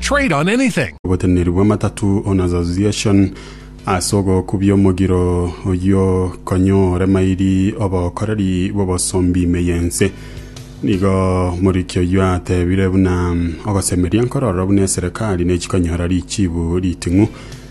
Trade on anything. Oboteneneri bw'amatatu on association ase ogokubia omogiro oyio konya ore mairi obokoreri bw'obosombi ime y'ense. Nigo Muriki oyio atebire buna ogosemeria nkoro ororo buna eserekari nechikonyora richibu riting'u.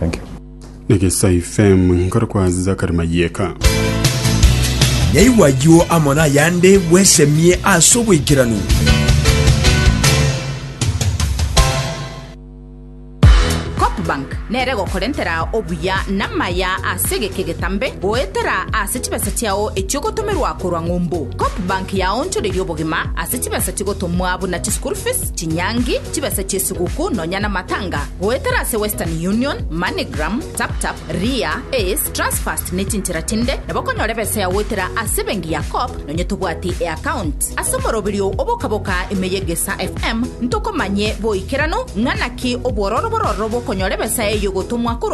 Thank you. Negesai fm nkore kwa zakari mayeka. Nyaigwa ayio amo nayande bwesemie ase oboikeranu. Bank nere gokorentera obuya namaya ase egeke getambe goetera ase chibesa chiao echiogotomerwa korwa ng'umbu. Cop Bank yaonchoreria obogima ase chibesa chigotomwa buna chischool fees, chinyangi, chibesa chi'esuguku nonya namatanga, goetera ase Western Union, MoneyGram, TapTap, Ria, Ace, Transfast ne chinchera chinde, nabo okonyora ebesa yao goetera ase ebenki ya Co-op nonya tobwati e'account. Ase omoroberio o boka-boka ime y'Egesaa FM, ntokomanye boikeranu ng'a naki obwororo bororo bokonyora ebesa eyio gotomwa korwa